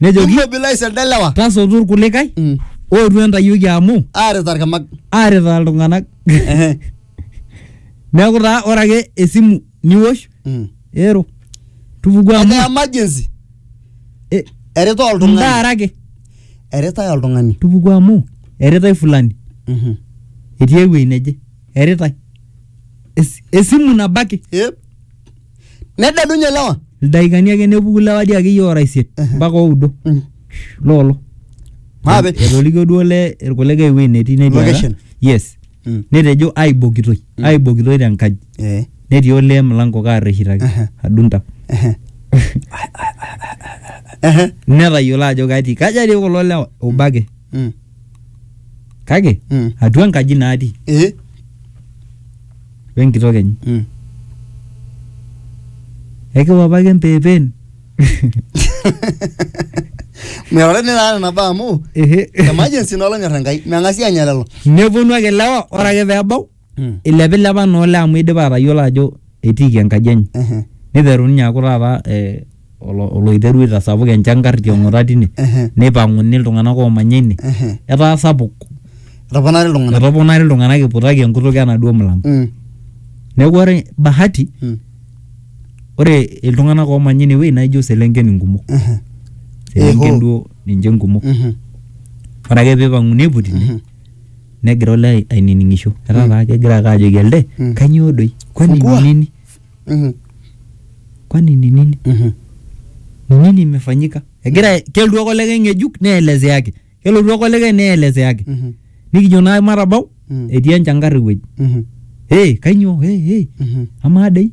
nejoki immobilize elde lewa tasotu irkulikae Mm. ootu entayioki amu aaret arkamak aaretaa iltung'anak Ehe. neeku taa ore ake esimu niwosh Mm. ero tupuku amu ene emergency eh, erita oltung'ani ndaara ake eritae oltung'ani tupuku amu eritae fulani Mhm. etii ewuei neje eritae Es- esimu nabo ake Yep. Nededunye lewa. Ildaikani ake nepuku lewa dii akeyie ora isiet mpaka oudo Mm. loolo. Maape. Etolikio duo le irkulikae ewuei netii netii ora. Location. Yes. Mm. Netejo aibokitoi, aibokitoi te nkaji. Eh. Netii olee mlango kaarreshitaki Aha. adunta. Ehe. Ehe. Netayiolo ajo katii. Kaja dii kulo lewa? Obo ake. Mm. kake Mm. atua enkaji natii Eh. we nkitok enye Mm. ekiwapaki empeepeen Meorani naa nena baa amu Ehe. emergency naa olonyor Enkai. Meng'asi anya lelo. neponu ake lewa ore ake peebau Mm. ilepilepa naa olee amu idipa atayiolo ajo etiiki enkaji enye Ehe. niteru ninye aaku taata eh, olo- oloiteru aitasapuk enchangar tiong'ota tine Ehe. neipang'uni iltung'anak oomanya ine Ehe. etaa sapuk etoponari iltung'anak etoponari iltung'anak iputaki enkutuk enaduo mulango Mm. neeku ore bahati Mm. ore iltung'anak oomanya ine wueji naijo selenken inkumok Ehe. selenken Eho. duo ninche inkumok Mhm. ore ake peipang'uni aiputi ine Mhm. Negira olee ainining'isho. Etaa taa kegira ake ajoki elde, Mm. kanyoo doi? Kwani ni Fungua. nini? Mhm. Kwani ni nini? Mhm. Ni nini imefanyika? Egira kelotu ake olikae ng'ejuk neelezeaki. Kelotu ake olikae neelezeaki. Mhm. Nikijo naa matabau, Mm. etii enchankarr ewueji. Mhm. Hey, kanyoo? Hey, hey. Mhm. Amaa dei?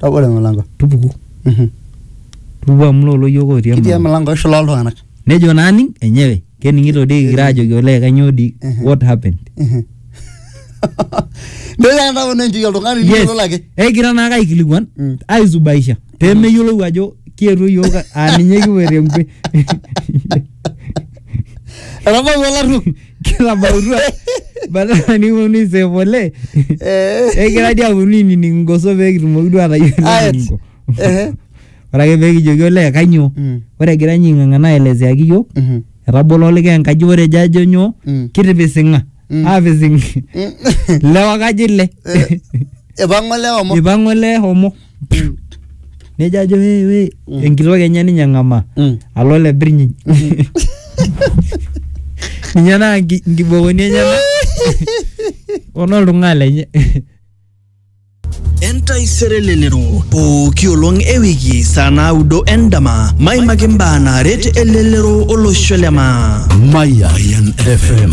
Tabolo emilango. tupuku Mhm. tupuku amu lolo yiok otii Kitii emlango emilango eshula oltung'anak. nejo naaning enyewe kening'ito dii kigira ajoki olee kanyoo dii Mhm. what happened Mhm. Nitoki ake ntapona enchei oltung'ani yes niyiololo ake. ekigira naake aikilikuan Mm. aisubaisha pemeyiolou ajo kietuo yiok aa ninye kipuoito enkwe Etabawua olaruok. kilabautua badala nikiponu aisave oleng Eh. egira dii aponu ainining ingoso pee kitumoki duo atayiolo Ayet. eninko Ehe. ore ake pee kijoki olee kanyoo Mm. ore egira ninye aing'ang'ana aelezeaki yiok Mhm. etabolo olikae enkaji ore ejo ajo nyoo Mm. kitipising'a Mm. aapising Mm. lewa kaji ile Eh, Ipang'o lewa mo. ipang'o olee homo nejo ajo "Wee, wee." Mm. enkitok enye ninye eng'amaa Mm. alo ole birnyiny ninye naa nki- nkibokoni enyena onoltung'aa lenye entaisere lelero pooki olong e wiki saa naudo endama maimaki mbaa naaret elelero olosho le maa Mayan FM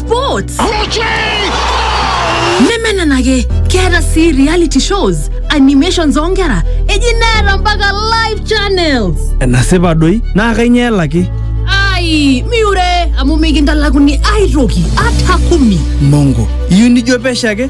sports nemenenake keeta sii reality shows animations oonkera eji neeta mpaka live channels enasipa doi naa kainyoo elaki ai miure amu mikintalakuni aitoki ata kumi mongo iyieu nijo pesho ake